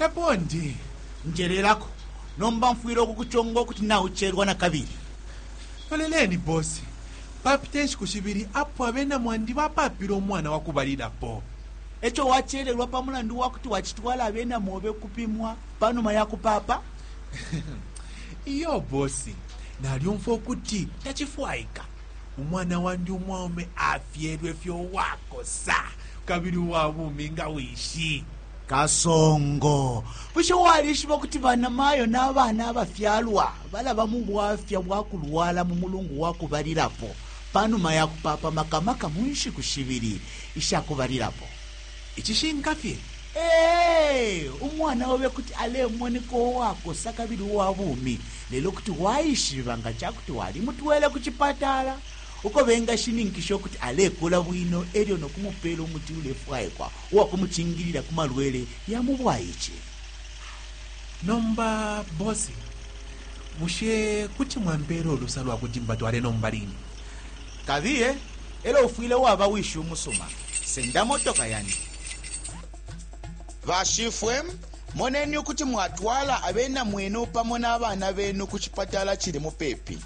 E po ndi. Njelelako, nomba mfwile ukukuconga ukuti naucelwa na kabili. Loleleni, bosi, papite nshiku shibili apo abena mwandi bapaapile umwana wa kubalilapo. E co wacelelwa pa mulandu wa kuti wacitwala abena mobe ukupimwa pa numa ya kupaapa? Iyo, bosi, nalyumfwa ukuti tacifwaika. Umwana wandi umwaume afyelwe fye uwakosa kabili uwa bumi nga wishi. kasongo bushe walishiba ukuti banamayo n'abana abafyalwa balaba mu bwafya bwa kulwala mu mulungu wa kubalilapo panuma ya kupapa makamaka mu nshiku shibili isha kubalilapo icishinka fye ee umwana obe kuti alemoneka uwakosa kabili uwa bumi lelo kuti waishiba nga ca kuti walimutwele ku cipatala uko bengashininkisha ukuti alekula bwino elyo nokumupeela umuti ulefwaikwa uwa kumucingilila ku malwele ya mu bwaice. Nomba bosi, bushe kuti mwampeela ulusa lwa kuti mbatwale nomba line? Kabiye, e lyo ufwile waba wishi umusuma. Senda motoka yandi. Bashifwe, moneni ukuti mwatwala abena mwenu pamo na bana benu ku cipatala cili mupepi.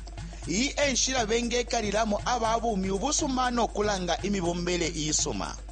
Iyi e nshila bengekalilamo aba bumi ubusuma no kulanga imibombele iisuma.